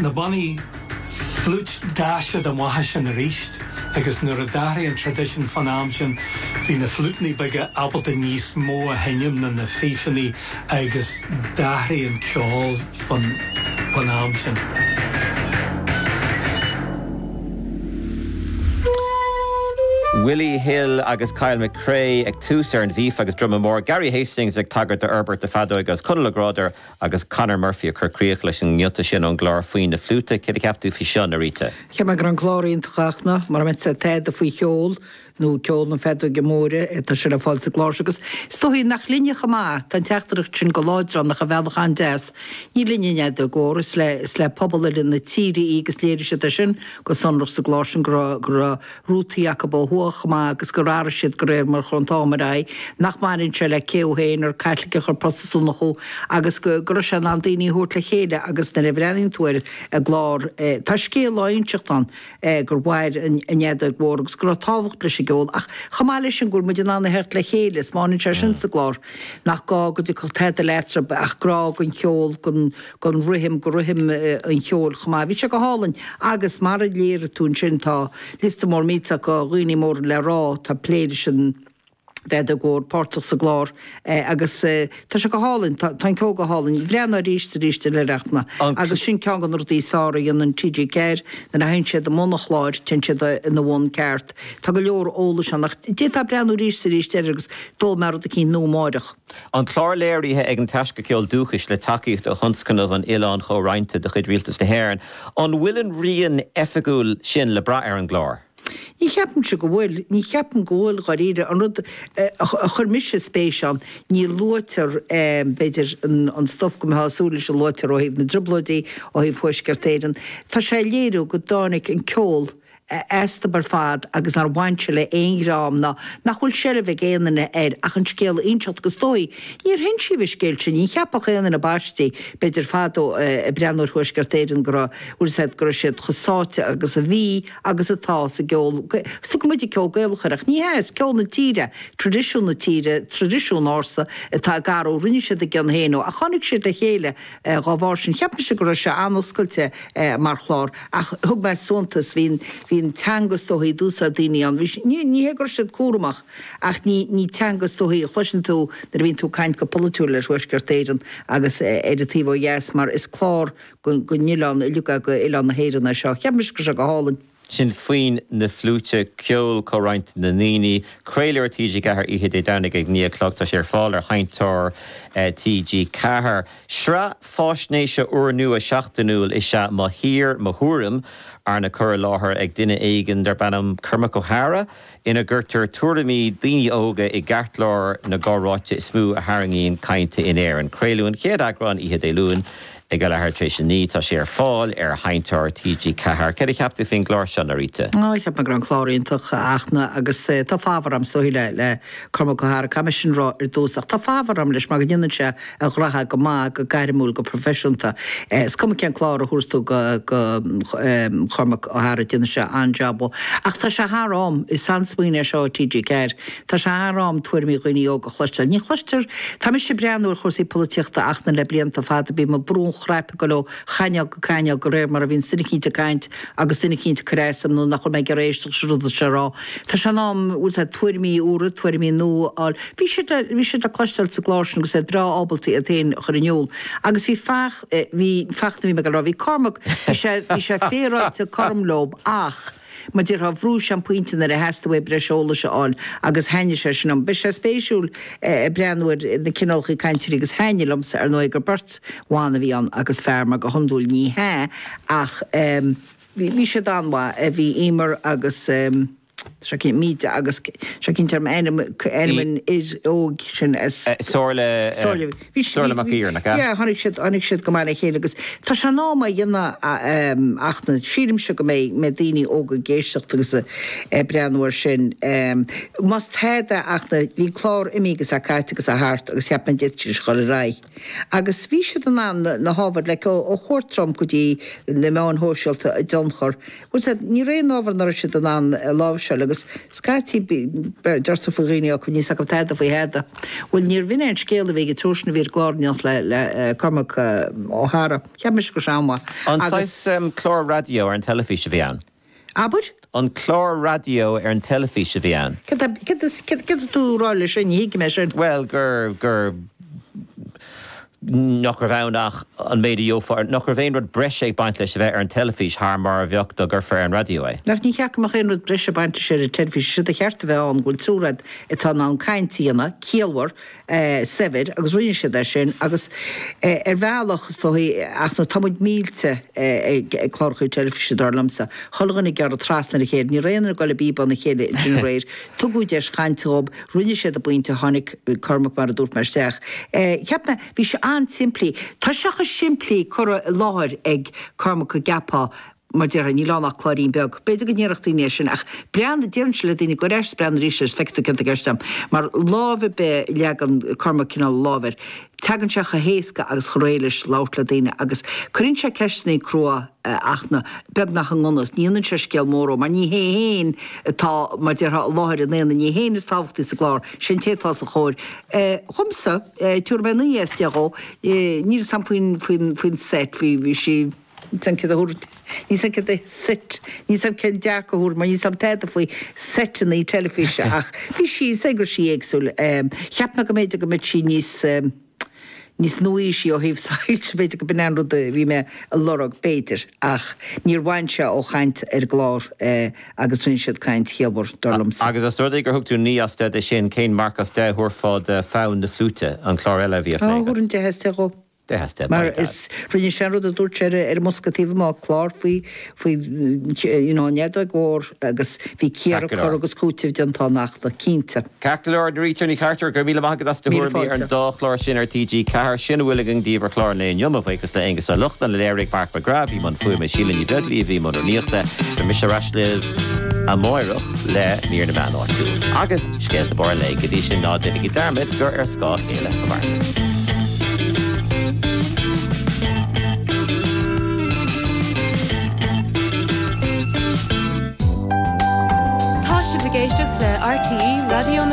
Na bannaí fliúit d'fhás siad amach as sin arís agus nuair a d'athraigh an traidisiún fán am sin bhí na fliútannaí beaga ábalta níos mó a sheinm ná na fífeannaí agus d'athraigh an ceol fán am sin. Willie Hill agus Kyle McCrea ag tús ar an bhfíf agus druma mór, Gary Hastings ag tagairt d'fhorbairt na feadóige agus Conal Ó Gráda agus Conor Murphy ag cur críoch leis an ngiota sin ón gclár Foinn na Fliúite, céard a cheap tú faoi seo, Norita? Cheap mé go raibh an clár iontach ach an-chur amach sa taighde faoi cheol, nó ceol na feadóige móire, tá sé le fáil sa gclár seo agus is dóichí nach linne chomh maith, tá an teachtaireacht sin go láidir ann ach ar bhealach an-deas. Ní linne an fheadóg mhór, is le pobal uile na tíre í agus léirigh siad é sin go sonrach sa gclár sin go raibh, go raibh, rútaí acu ó thuaidh chomh maith agus gur athraigh siad de réir mar a chuaigh an t-am ar aghaidh, nach mbaineann sé le cé thú féin, más Caitliceach nó Protastúnach thú, agus go raibh sé in ann daoine a thabhairt le chéile agus nuair a bhreathnaíonn tú ar an gclár tá scéal á inseacht ann gur mhair an fheadóg mhór agus go raibh tábhacht leis an gceol ach chomh maith leis sin go bhfuil muid in ann a theacht le chéile, is míníonn sé sin sa gclár nach gá go dteastódh tada uait ach grá don cheol, don. don rithim, do rithim an cheoil chomh maith. Bhí sé go hálainn agus, mar a léirigh tú ansin, tá liosta mór acu de dhaoine mór le rá, atá ag plé leis an bhfeadóg mhór, páirteach sa gclár agus tá sé go hálainn, tá an ceol go hálainn. Bhreathnaigh arís 's arís ar Oidhreacht na agus sin ceann de na rudaí is fearr a dhéanann TG4, nuair a théann siad i mbun cláir, téann siad ina bhun ceart. Tá go leor eolais ann ach d'fhéadfá breathnú arís 's arís air agus d'fhoghlaimeofá rud eicínt nua amáireach. An clár léirithe ag an Taisce Ceoil Dúchais le tacaíocht ó Thionscnamh an Oileáin Chomhroinnte de chuid Rialtas na hÉireann. An bhfuil an rian oifigiúil sin le brath ar an gclár? Ní cheapaimse go bhfuil. Ní cheapaim go bhfuil, dháiríre. An rud a chuir mise spéis ann, ní luaitear, b'fhéidir, an stuif go mbeifeá ag súil leis a luafaí ó thaobh na dTrioblóidí, ó thaobh Thuaisceart Éireann. Tá sé ag léiriú go dtáinig an ceol aisti ar fad agus nár bhain sé le aon dream ná nach bhfuil seilbh ag aon duine air ach an scéal a inseacht agus is dóichí, níor hinsíodh an scéal sin, ní cheapfadh aon duine, páistí, b'fhéidir fadó, ag breathnú ar Thuaisceart Éireann go raibh, go bhfuil siad, go raibh siad chomh sáite agus a bhí agus atá sa gceol, is tugann muid ceol Gaelach air ach ní hea, is ceol na tíre, tradisiún na tíre, traidisiún ársa atá acu agus, rinne siad a gcion féin ó ach tháinig siad le chéile Dhá bharr sin, cheap mise go raibh sé an-oscailte mar chlár ach thug mé suntas, bhí an teanga is dóichí a d'úsáid daoine ann, bhí sí, ní hé go raibh siad cúramach ach ní teanga is dóichí a chloiseann tú nuair a bhíonn tú ag caint go polaitiúil ar Thuaisceart Éireann agus ar an taobh ó dheas mar is clár don oileán uilig, do oileán na hÉireann é seo. Cheap mise go raibh sé go hálainn. sin foinn na fliúite, ceol comhroinnte na ndaoine. Craoladh ar TG4 oíche Dé Domhnaigh ag 9 a chlog. Tá sé ar fáil ar sheinnteoir TG4. Sraith fáisnéise úrnua seachtainiúil is ea Mo Thír, Mo Thuairim, arna cur i láthair ag duine éigin darb ainm Cormac Ó hEadhra. ina gcuirtear tuairimí daoine óga i gceartlár na gcomhráite is mó a tharraingíonn cainte in Éirinn. Craoladh an chéad eagrán oíche Dé Luain ag a leathuair tar éis a naoi. Tá sé ar fáil ar sheinnteoir TG Ceathair. Céard a cheap tú faoin gclár seo, Norita? Á, cheap mé go raibh an clár iontach, a Fhachtna, agus tá fabhar a'm, is dóigh, le Cormac Ó hEadhra. Caithfidh mé sin rá ar dtús. Ach tá fabhar a'm leis mar go ndéanann sé a ghnotha go maith, go gairmiúil, go proifisiúnta. Is cuma cén clár a thabharfas tú go Chormac Ó hEadhra, déanann sé an-jab. Ach tá sé thar am, is an-smaoineamh é seo TG4, tá sé thar am tuairimí dhaoine óga a chloisteáil. Ní chloistear, tá mise ag breathnú ar chúrsaí polaitíochta, a Fhachtna, le blianta fada, bíonn mé ag brú an chnaipe ag goil ó chainéal go cainéal de réir mar a bhíonns duine eicínt ag caint agus duine eicínt ag cur as dom nach bhfuil mé ag iarraidh éisteacht leis an rud atá sé a rá. Tá sé in am, bhfuil 'fhios a'd, tuairimí úra, tuairimí nua a fháil. Bhí siad le, bhí siad le cloisteáil sa gclár sin agus iad breá ábalta iad féin a chur in iúl. Agus bhí Fach, bhí, Fachtna a bhí mé ag rá, bhí Cormac, bhí sé, bhí sé féaráilte cothrom leob ach, Mar a déarfá bhrúigh sé an pointe nuair a theastaigh uaidh breis eolais a fháil agus thaitnigh sé sin liom. Beidh sé spéisiúil ag breathnú ar na cineálacha cainteoirí agus thaitnigh liomsa, ar ndóigh, gur beirt bhan a bhí ann agus fear mar go hiondúil ní hea ach bhí siad an-mhaith, bhí Emer agus seo cinnte, Míde agus cén t-ainm, ainm an fhir óig sin as Somhairle. Bhí siad, Somhairle Mac bhí, Iarlaith, yeah, yeah? tháinig siad, tháinig siad go maith le chéile agus tá sé in am é a dhéanamh a, em, a Fhachtna, sílimse go mbeidh, mbeidh daoine óga ag éisteacht agus a, ag breathnú ar sin, em, más tada a Fhachtna, bhí an clár imithe agus caite agus a thart agus cheap mé an dtig sin a chur ar aghaidh agus bhí siad in ann na, na hábhair, like ó, ó chuairt Trump go dtí na meáin shóisialta a dtionchar Más ea, ní raibh aon ábhar nach raibh siad in ann a láimhseáil agus scaití deir tú faoi dhaoine óga, níl 's acu tada faoi thada. Bhuel, níorbh in é an scéal a bhí ag an triúr sin a bhí ar an gclár in éineacht le Cormac Ó hEadhra. Cheap mise go raibh sé an-mhaith An agus. saghas clár raidió ar an teilifís a bhí ann? Abair? An clár raidió ar an teilifís a bhí ann? Céard atá tú a rá leis sin? Ní thuigim é sin. Bhuel, gur, gur, nach raibh ann ach an méid a gheofá, nach raibh aon rud breise ag baint leis a bheith ar an teilifís thar mar a bheadh dá gcuirfeá ar an raidió é. Ach níor cheart go mbeadh aon rud breise ag baint leis ar an teilifís, séard ba cheart a bheith ann go bhfuil triúr agat atá in ann caint a dhéanamh, ciallmhar, saibhir, agus rinne siad é sin, agus ar bhealach, is dóigh, ach tá muid millte ag cláracha teilifíse, dar liomsa, chuile dhuine ag gearradh trasna ar a chéile, ní raibh aon duine ag goil i bpíobán a chéile ansin aréir, Tugadh deis chainte dhóib, rinne siad a bpointe, tháinig Cormac, mar a dúirt mé, isteach. Cheap mé, bhí sé an-simplí, tá sé chomh simplí curtha i láthair ag Cormac go gceapfá, mar a déarfá, níl ann ach cláirín beag. B'fhéidir go ndéarfadh daoine é sin, ach breathnaigh, déarfainnse le daoine, gabh ar ais 's breathnaigh arís agus feicfidh tú céard atá i gceist a'm, mar lámh ar bith, leagann Cormac cineál a lámh air. Teagann sé chomh héasca agus chomh réidh leis labhairt le daoine agus cuireann sé ceisteannaí crua ach na, beagnach i ngan fhios, ní dhéanann sé scéal mór dhó, mar ní hé fhéin atá, mar déarfá, i láthair an aonaigh, ní hé fhéin is tábhachtaí sa gclár, sé an té atá os a chomhair. Dhomsa, tabharfaidh mé naoi as deich dhó, níl fhios a'm faoin, faoin, faoin set, bhí, bhí sí, níl fhios a'm céard a thabharfainn, níl fhios a'm cén set, níl fhios a'm cén marc a thabharfainn mar níl fhios a'm tada faoi seiteannaí teilifíse ach bhí sí, is é go raibh sí éagsúil. Cheap mé go mb'fhéidir go mbeadh sí níos, níos nua-aoisí ó thaobh soilse, b'fhéidir go b'in an rud a bhí mé a lorg, b'fhéidir ach níor bhain sé ó chaint ar an gclár agus rinne siad caint chiallmhar, dar liomsa. Agus os rud é gur thug tú 9 as 10 de sin, cén marc as 10 a thabharfá do Fonn na Fliúite, an clár eile a bhí á phlé agat? Ó, thabharfainn 10 as 10 dhó. Deich as deich. Mar arís rinne sé an rud a dúirt sé ar ar an mbosca taobh amuigh, clár faoi faoi you know an fheadóg mhór agus bhí cíoradh, cur agus cúiteamh déanta ann ach tá, cinnte. Ceart go leor, Doirí Tierney Carter, go raibh míle maith agat as do Míle thuairimí ar an fáilte. dá chlár sin ar TG4. Sin a bhfuil againn daoibh ar chlár an lae inniu. Mo bhuíochas le Aonghus Ó Lochlainn a léirigh, Mark McGrath a bhí i mbun fuaime, Síle Ní Bheaglaoich a bhí i mbun rúnaíochta. Beidh mise ar ais libh amáireach le mír na meán áitiúil. Agus. Scéalta Barr an Lae, go dtí sin ná déanaigí dearmad gur ar scáth a chéile a mhairimid. Tá sibh ag éisteacht le RTÉ Raidió na.